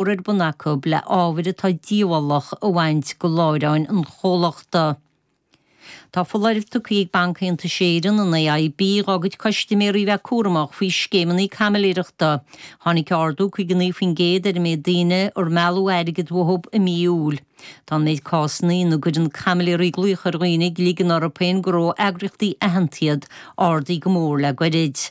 mór ar bun acu le ábhair atá díobhálach a bhaint de láithreáin an chomhlachta. Tá foláireamh tugtha ag Banc-Aontais Éireann, an AIB, dhá gcuid custaiméirí a bheith cúramach faoi scéimeanna caimiléireachta. Tháinig ardú 59% ar an méid daoine ar mealladh airgead uathu i mí Iúil. Tá an méid cásanna ina gcuireann caimiléirí glaoch ar dhaoine ag ligean orthu féin gur ó eagraíochtaí aitheanta iad, ardaithe go mór le goirid.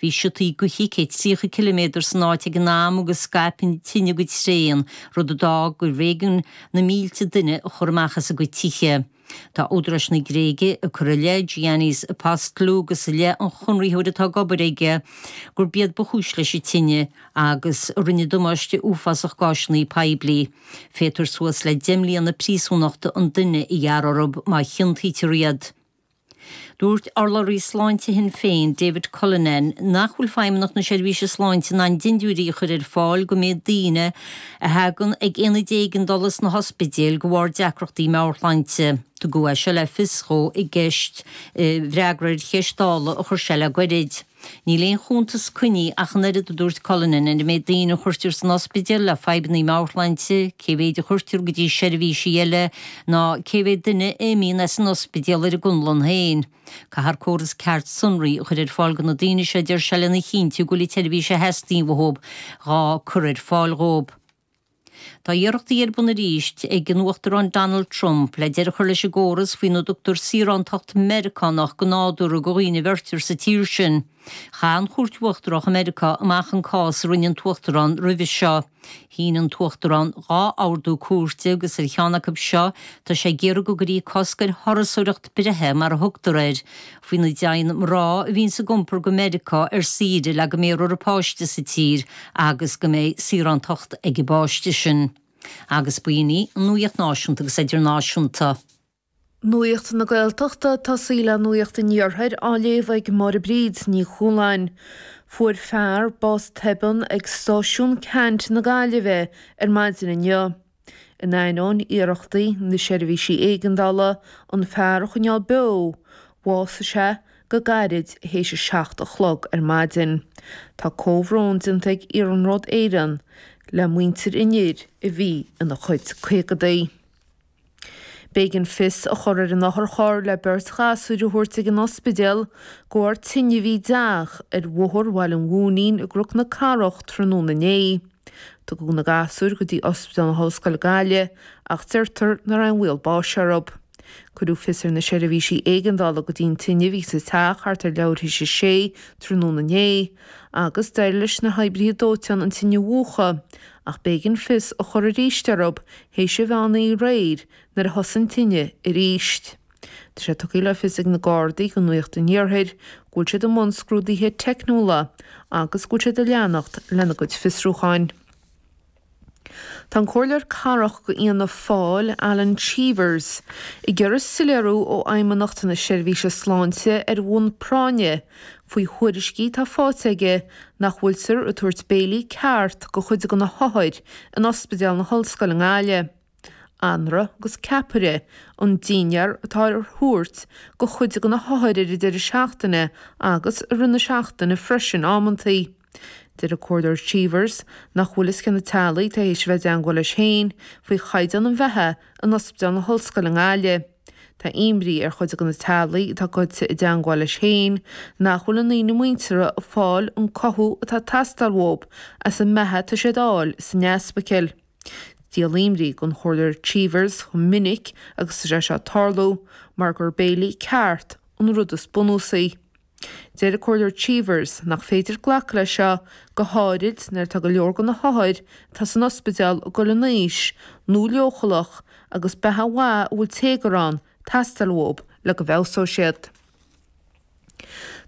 Bhí siotaí gaoithe 130 ciliméadar san áit ag an am agus scaip an tine go tréan, rud a d'fhág gurbh éigean na mílte duine a chur amach as a gcuid tithe. Tá údaráis na Gréige ag cur i leith Giannis Apostolou agus i leith an chonraitheoir atá ag obair aige gurb iad ba chúis leis an tine agus rinneadh damáiste uafásach d'áiseanna poiblí. Féadfar suas le deich mbliana príosúnachta an duine a ghearradh orthu má chiontaítear iad. Dúirt urlabhraí sláinte Shinn Féin, David Cullinane, nach bhfuil Feidhmeannacht na Seirbhíse Sláinte in ann dindiúirí a chur ar fáil don méid daoine a thagann ag ionaid éigeandála sna hospidéil de bharr deacrachtaí meabhairshláinte. Tugadh é seo le fios dhó i gceist i bhfreagra ar cheist Dála a chuir sé le gairid. Níl aon chuntas coinnithe ach an oiread, a dúirt Cullinane, ar an méid daoine a chuirtear san ospidéal le fadhbanna meabhairshláinte, cé mhéid a chuirtear go dtí seirbhísí eile, ná cé mhéad duine a imíonn as an ospidéal ar a gconlán féin. Caithfear córas ceart sonraí a chur ar fáil do na daoine seo, a deir sé, lena chinntiú go bhfuil an tseirbhís a theastaíonn uathu á cur ar fáil dhóibh. Tá iarrachtaí ar bun arís ag an Uachtarán Donald Trump le deireadh a chur leis an gcóras faoina dtugtar saorántacht Mheiriceánach go nádúrtha do dhaoine a bheirtear sa tír sin. Chaith an Chúirt Uachtarach i Meiriceá amach an cás a rinne an tUachtarán roimhe seo. Shín an tUachtarán dhá ordú cúirte agus ar cheann acu seo tá sé ag iarraidh go gcuirfí cosc ar thurasóireacht breithe mar a thugtar air, Faoina dtéann mná a bhíonn ag iompar go Meiriceá ar saoire le go mbéarfar an páiste sa tír agus go mbeidh saorántacht ag an bpáiste sin. Agus ba in í an nuaíocht náisiúnta agus idirnáisiúnta. Nuaíocht na Gaeltachta ag tosaí le nuaíocht an Iarthair á léamh ag Máire Bríd Ní Chualáin. Fuair fear bás tobann ag Stáisiún Ceannt na Gaillimhe ar maidin inniu. In ainneoin iarrachtaí na seirbhísí éigeandála, an fear a choinneáil beo, bhásaigh sé go gairid théis a seacht a chlog ar maidin. Tá comhbhrón déanta ag Iarnród Éireann le muintir an fhir a bhí ina chuid caogaidí. B'éigean fios a chur ar an otharcharr le beirt ghasúir a thabhairt ag an ospidéal de bharr tine a bhí i dteach ar bhóthar Bhaile an Mhóinín i gCnoc na Cathrach tráthnóna inné. Tugadh na gasúir go dtí Ospidéal na hOllscoile Gaillimh ach deirtear nach raibh aon bhaol báis orthu. Cuireadh fios ar na seirbhísí éigeandála go dtí an tine a bhí sa teach thart ar leathuair théis a sé tráthnóna inné agus d'éirigh leis na hoibrithe dóiteáin an tine a mhúchadh ach b'éigean fios a chur arís orthu théis an mheán oíche aréir nuair a thosaigh an tine arís. Tá sé tugtha le fios ag na Gardaí do Nuacht an Iarthair go bhfuil siad i mbun scrúduithe teicniúla agus go bhfuil siad ag leanacht lena gcuid fiosrúcháin. Tá an Comhairleoir Cathrach de Fhianna Fáil, Alan Cheevers, ag iarraidh soiléiriú ó Fheidhmeannacht na Seirbhíse Sláinte ar bhonn práinne faoi thuairiscí atá faighte aige nach bhfuiltear ag tabhairt béilí ceart do chuid de na hothair in Ospidéal na hOllscoile i nGaillimh. anraith agus ceapaire, an dinnéar atá á thabhairt do chuid de na hothair ar an deireadh seachtaine agus i rith na seachtaine freisin amantaí. Deir an Comhairleoir Cheevers nach bhfuil fhios cé na teaghlaigh atá théis a bheith i dteangmháil leis féin faoi chaighdeán an bheatha in Ospidéal na hOllscoile i nGaillimh. Tá imní ar chuid de na teaghlaigh atá goite i dteangmháil leis féin nach bhfuil a ndaoine muinteartha ag fáil an cothú atá ag teastáil uathu as an mbeatha atá siad a fháil san easpaicil. Díol imní don Chomhairleoir Cheevers chomh minic agus atá sé seo ag tarlú mar gur béilí ceart an rud is bunúsaí. Deir an Comhairleoir Cheevers nach féidir glacadh leis seo, go háirid nuair atá go leor de na hothair atá san ospidéal ag gul in aois nó leochaileach agus beatha mhaith a bhfuil téagar ann ag teastáil uathu le go bhfeabhsódh siad.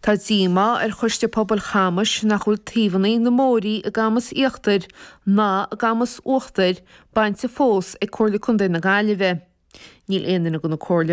Tá díomá ar Choiste Pobail Chamais nach bhfuil taobhanna na mbóithrí i gCamas Íochtair ná i gCamas Uachtair bainte fós ag Comhairle Chontae na Gaillimhe. Níl aon duine de na Comhairleoirí,